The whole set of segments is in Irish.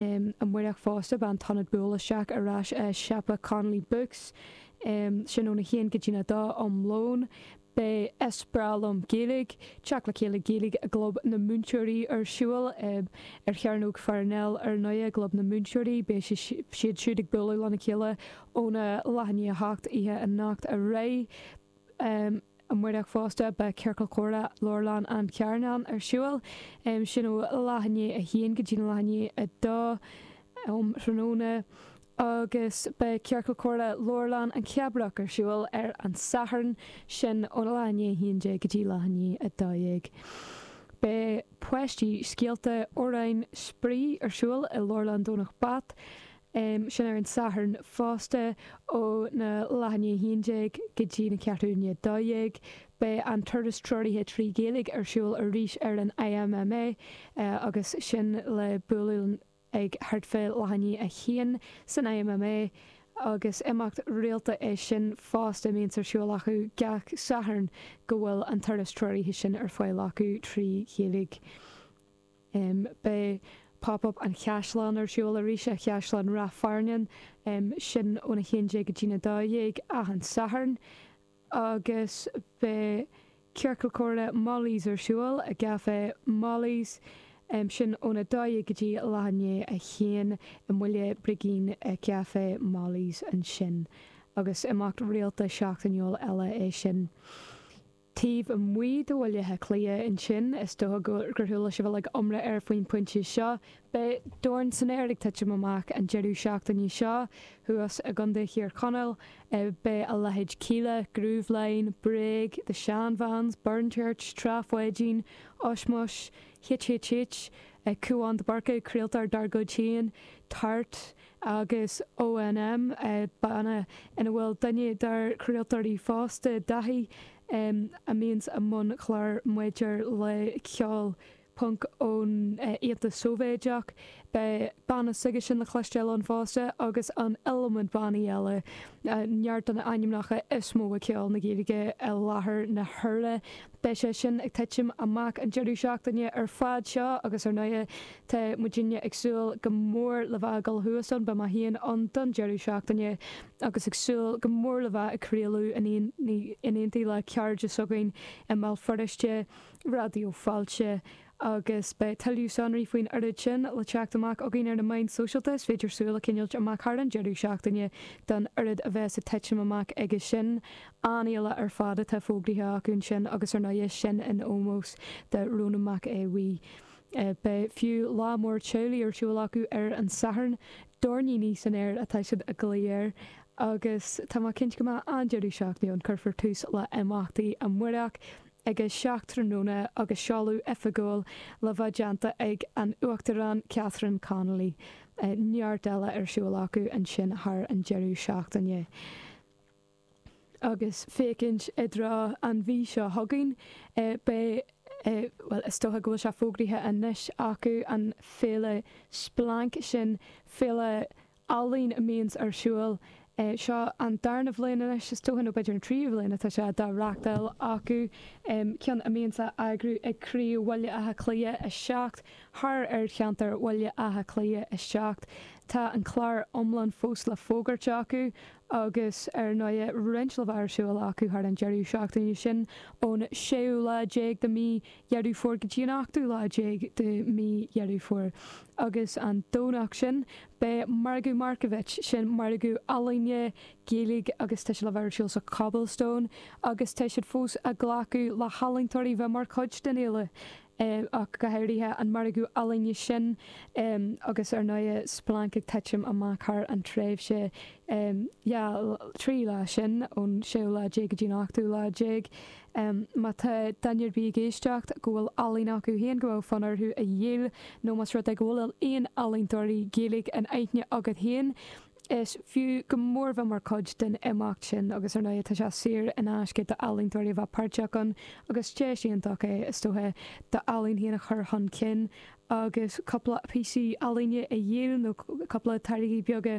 amárach fosta, beidh an t-ionad buail isteach ar ais i siopa Connolly Books, sin óna haon go dtína dó um lón. Beidh Is breá liom Gaeilge, Teacht le Chéile Gaeilge i gClub na Múinteoirí ar siúl ar Chearnóg Pharnell ar ndóigh i gClub na Múinteoirí. Beidh siad siúd ag bualadh lena chéile óna leath i ndiaidh a hocht oíche anocht ar aghaidh. Amárach fosta, beidh Ciorcal Comhrá Leabharlann an Chearnáin ar siúl, sin ó leath i ndiaidh a haon go dtína leath i ndiaidh a dó um thráthnóna, agus beidh Ciorcal Comhrá Leabharlann na Cabraí ar siúl ar an Satharn, sin óna leath i ndiaidh a haon déag go dtí leath i ndiaidh a dó dhéag. Beidh Páistí, Scéalta, Amhráin, Spraoi ar siúl i Leabharlann Dhomhnach Broc, um sin ar an Satharn fosta óna leath i ndiaidh 11 go dtína ceathrú chun a dó dhéag. Beidh an turas treoraithe trí Ghaeilge ar siúl arís ag an IMMA agus sin le bualadh ag thart fá leath i ndiaidh a haon san IMMA agus imeacht rialta é sin fosta a bíonns ar siúl acu gach Satharn go bhfuil an turas treoraithe sin ar fáil acu trí Ghaeilge. Beidh Pop Up an Chaisleáin ar siúl arís i gCaisleán Ráth Fearnáin, sin óna 11 go dtína 12, achan Satharn, agus beidh Ciorcal Comhrá Molly's ar siúl i gCafé Molly's, sin óna 12 go dtí leath i ndiaidh 1, i mBaile Brigín i gCafé Molly's ansin, agus imeacht rialta seachtainiúil eile é sin. taobh amuigh de Bhaile Átha Cliath. Ansin, is dócha gur chuala sibh uilig iomrá air faoin bpointe seo. Beidh Dorn san Aer ag titim amach an deireadh seachtaine seo thuas i gContae Thír Chonaill. Beidh a leithéid Kíla, Grooveline, Bréag, The Shan Vans, Burn Church, Trá Pháidín, Ush Mush, HHH, Cúán de Búrca, craoltóir dár gcuid féin, Tart, agus ONM banna ina bhfuil duine dár craoltóirí fosta, Daithí, a mbíonn i mbun clár maidir le ceol punc ón Aontas Sóivéideach. Beidh banna s'aigesean le cloisteáil ann fosta agus an iliomad bannaí eile, neart de na ainmneacha is mó i gceol na Gaeilge i láthair na huaire. Beidh sé sin ag titim amach an deireadh seachtaine ar fad seo agus ar ndóigh tá muidinne ag súil go mór le bheith ag dul suas ann, beidh mé féin ann don deireadh seachtaine agus ag súil go mór le bheith ag craoladh in aontaí le cairde s'againn i mBéal Feirste, Raidió Fáilte. agus beidh tuilleadh sonraí faoin uilig sin le teacht amach againn ar na meáin sóisialta, is féidir súil a choinneáilt amach thar an deireadh seachtaine don oiread a bheas ag titim amach aige sin. An-fhéile ar fad atá fógraithe acu ansin agus ar ndóigh, sin in ómós do Rónán Mac Aodh Bhuí. Beidh fiú lá mór teaghlaigh ar siúl acu ar an Satharn, Doirníní san Aer atá siad ag glaoch air, agus tá mé cinnte go mbeidh an-deireadh seachtaine ann. Cuirfear tús le himeachtaí amuireach ag a seacht tráthnóna agus seoladh oifigiúil le bheith déanta ag an Uachtarán Catherine Connolly. neart eile ar siúl acu ansin thar an deireadh seachtaine. Agus féachaint i dtreo an mhí seo chugainn, beidh, bhuel, is dócha go bhfuil sé fógraithe anois acu, an féile Splanc, sin féile ealaín a mbíonns ar siúl. Seo an darna bhliain anois, is dócha, nó b'fhéidir an tríú bhliain atá sé dá reachtáil acu, ceann a mbíonns á eagrú ag craobh Bhaile Átha Cliath 7 thart ar cheantar Bhaile Átha Cliath 7. Tá an clár iomlán fós le fógairt acu agus, ar ndóighe, roinnt le bheith ar siúl acu thar an deireadh seachtaine sin ón séú lá déag de mhí Dheireadh Fómhair go dtí an ochtú lá déag de mhí Dheireadh Fómhair, agus an Domhnach sin beidh Margadh Markievicz, sin margadh ealaíne, Gaeilge agus tá sé le bheith ar siúl sa Cobblestone agus tá siad fós ag glacadh le healaíontóirí bheith mar chuid den fhéile ach go háirithe an margadh ealaíne sin agus ar ndóigh Splanc ag titim amach thar an tréimhse dhá, trí lá sin ón séú lá déag go dtí an ochtú lá déag. em. má tá duine ar bith ag éisteacht go bhfuil ealaín acu féin go bhfuil fonn orthu a dhíol nó más rud é go bhfuil aon ealaíontóirí Gaeilge in aithne agat féin is fiú go mór bheith mar chuid den imeacht sin agus ar ndóigh tá sé saor in aisce d'ealaíontóirí a bheith páirteach ann agus deis iontach é is dócha d'ealaín féin a chur chun cinn agus cúpla píosaí ealaíne a dhíol nó cúpla táirgí beaga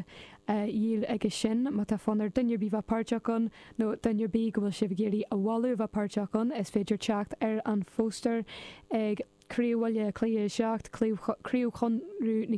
a dhíol aige sin má tá fonn ar duine ar bith bheith páirteach ann. nó duine ar bith go bhfuil sibh ag iarraidh a mholadh a bheith páirteach ann, is féidir teacht ar an phóstaer ag Craobh Bhaile Átha Cliath 7, Craobh Chonradh na.